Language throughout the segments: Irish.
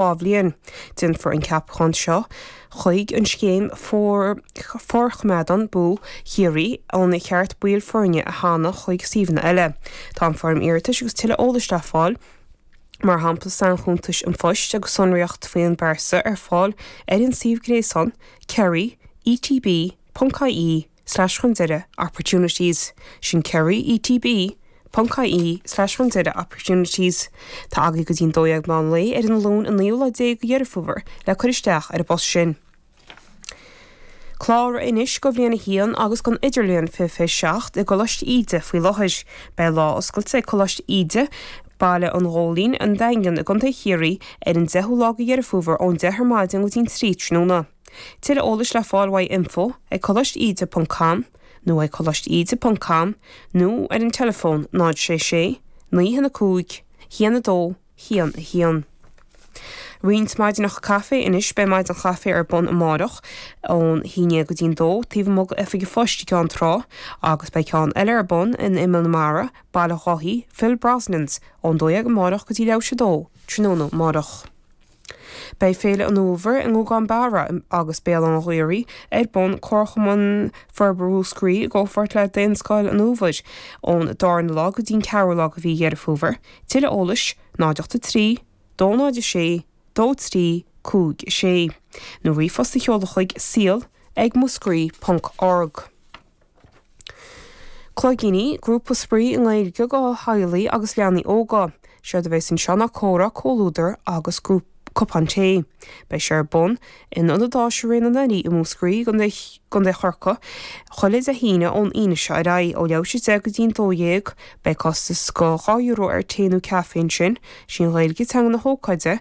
dhá bhliain. Déanfar an ceapachán seo chuig an scéim Forchoimeádann BOO Chiarraí an ceart baill foirne a shannadh chuig suíomhanna eile. Tá an foirm iarratais agus tuilleadh eolais le fáil, mar shampla sainchuntais an phoist agus sonraíocht faoin bpearsa ar fáil ar an suíomh gréasáin kerry, etb, ponc, ie. slash chun deireadh, opportunities, sin Kerry, ETB, Ponc IE, slash chun deireadh, opportunities, Tá agaidh go dtí an dó dhéag meán lae ar an Luan an naoú lá déag de Dheireadh Fómhair le cur isteach ar an bpost sin. Cláraigh anois do bhliain a haon agus don idirbhliain fiche fiche seacht i gColáiste Íde faoi láthair. Beidh lá oscailte ag Coláiste Íde, Baile an Ghóilín, An Daingean, i gContae Chiarraí ar an deichiú lá de Dheireadh Fómhair ón deich ar maidin go dtí an trí tráthnóna. Tuilleadh eolais le fáil uaidh, info ag coláiste íde ponc com nó ag coláiste íde ponc com nó ar an teileafón 0 6 6 9 1 5 1 2 1 1. Roinnt maidineacha caife anois beidh maidin chaife ar bun amárach ón haon déag go dtí'n dó taobh amuigh d'oifig an phoist i gCeann Trá agus beidh ceann eile ar bun in Imeall na Mara, Baile Dháithí, Phil Brosnans, ón dó dhéag amárach go dtí leathuair tar éis a dó tráthnóna amárach. Beidh Féile an Fhómhair i nGuagán Barra agus Béal Átha an Ghaorthaidh ar bun, Comharchumann Forbartha Mhúscraí i gcomhpháirt le Daonscoil an Fhómhair, ón darna lá go dtí'n ceathrú lá de mhí Dheireadh Fómhair. Tuilleadh eolais, 083 206 2356 nó ríomhphost a sheoladh chuig, Suil ag muscrai ponc org. Cloigíní, grúpa spraoi i nGaeilge do theaghlaigh agus leanaí óga, séard a bheas anseo ná comhrá, comhluadar agus cupán tae. Beidh sé ar bun in Ionad Áise Ré na nDoirí i Múscraí, Contae Chorcaí, chuile Dé hAoine ón Aoine seo ar aghaidh, ó leathuair tar éis a 10 go dtí an 12. Beidh costas de €2 ar tae nó caife ansin. Sí an Ghaeilge teanga na hócáide,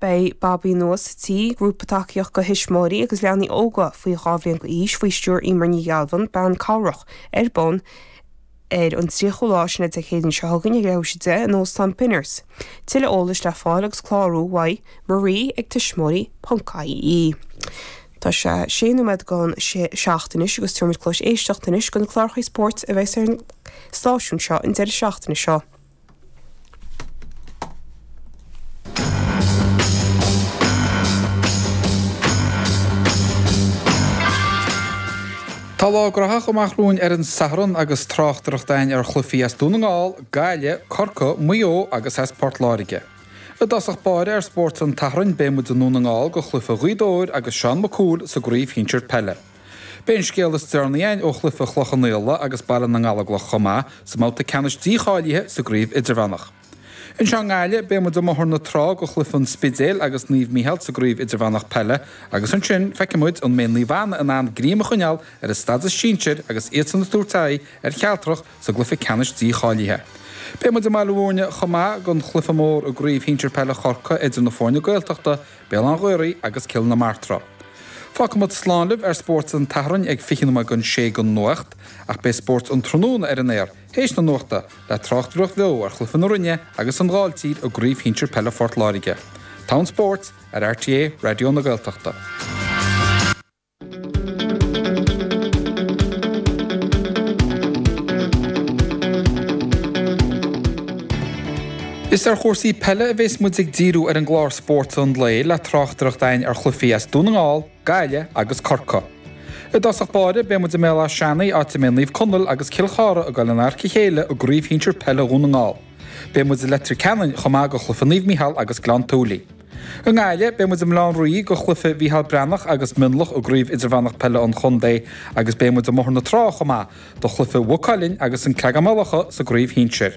Beidh Babaí nua sa Tigh, grúpa tacaíochta do thuismitheoirí agus leanaí óga faoi dhá bhliain d'aois faoi stiúir Emer Ní Ghealbháin, bean cabhrach, ar bun ar an 30ú lá sin Dé Céadaoin seo chugainn ag leathuair tar éis a 10 in Óstán Benners. Tuilleadh eolais le fáil agus clárú uaidh Marie ag tuismitheoirí.ie Tá sé sé nóiméad don seacht anois agus tabharfaimid cluas éisteachta anois do na cláracha spóirt a bheas ar an stáisiún seo an deireadh seachtaine seo. Tá lá graitheach amach romhainn ar an Satharn agus tráchtaireacht againn ar chluichí as Dún na nGall, Gaillimh, Corcaigh, Maigh Eo agus as Port Láirge. I dtosach báire ar Spórt an tSathairn beidh muid i nDún na nGall do chluiche Ghaoth Dobhair agus Seán Mac Cumhaill sa gcraobh shinsir peile. Beidh an scéal is deireanaí againn ó chluiche Chloich Cheann Fhaola agus Baile na nGallóglach chomh maith, sa mbabhta ceannais dícháilithe sa gcraobh idirmheánach. Anseo i nGaillimh, beidh muid i mBóthar na Trá do chluiche an Spidéil agus Naomh Mícheál sa gcraobh idirmheánach peile agus ansin, feicfidh muid an mbeidh Naomh Anna in ann greim a choinneáil ar a stádas sinsir agus iadsan ag tabhairt aghaidh ar Chealtrach sa gcluiche ceannais dícháilithe. Beidh muid i mBaile Mhúirne chomh maith don chluiche mór i gcraobh shinsir peile Chorcaigh idir na foirne Gaeltachta Béal Átha an Ghaorthaidh agus Cill na Martra. Fágfaidh muid slán libh ar spórt an tSathairn ag 20 nóiméad don 6 don nuacht, ach beidh spórt an tráthnóna ar an aer théis na nuachta le tráchtaireacht bheo ar chluiche na Rinne agus an Ghailltír i gCraobh Shinsir Peile Phort Láirge. Togha an spóirt ar RTÉ Raidió na Gaeltachta. Is ar chúrsaí peile a bheas muid ag díriú ar an gclár Spórt an Lae le tráchtaireacht againn ar chluichí as Dún na nGall, Gaillimh agus Corcaigh. I dtosach báire beidh muid i mBéal Átha Seanaidh áit a mbeidh Naomh Conaill agus Cill Chartha ag dul in adharca a chéile i gcraobh shinsir peile Dhún na nGall. Beidh muid i Leitir Ceanainn chomh maith do chluiche Naomh Mícheál agus Gleann tSúilí. I nGaillimh, beidh muid i mBaile Átha an Rí do chluiche Mhícheál Breathnach agus Mionlach i gCraobh Idirmheánach Peile an Chontae agus beidh muid i mBóthar na Trá chomh maith do chluiche Mhaigh Cuilinn agus An Creagán-Maigh Locha sa gCraobh Shinsir.